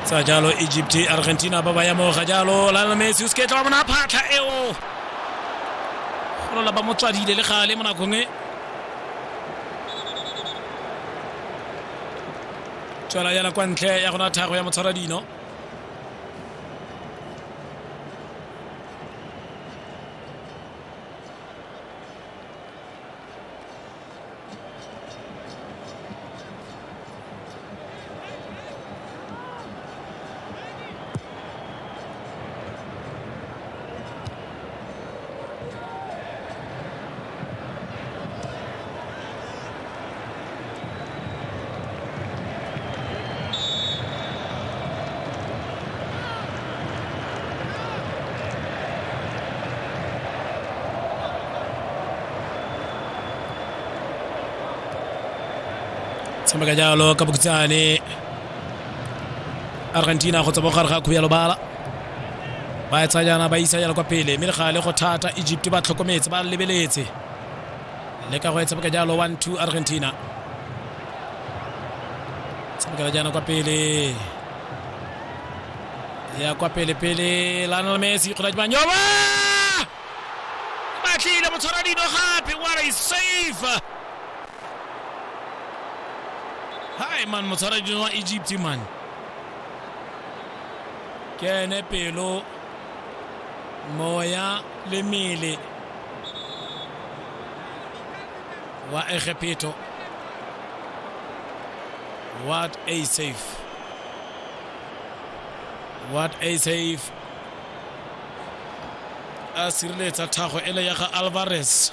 tsa jalo egypt argentina ba ba ya mo ga jalo lionel messi o seketla wa bona phatlha eo golola ba mo tswadile le gale mo nakong e tswela yana kwa ntle ya gona thago ya motshwara dino tshameka jalo ka bokhutsane argentina go tswa mo gare ga khuya lobala ba e tsayana ba isa jana kwa pele mme le gale go thata egypt ba tlhokometse ba lebeletse le ka go e tshameka jalo one two argentina tshamekela jana kwa pele ya kwa pele pele lanel messi kgona dimanyoba ba tlile motshwara dino gape what a safe hai man motshwara dino wa egypt man ke ene pelo moya le mele wa egepheto what a save what a save a sireletsa thago ele ya ga alvarez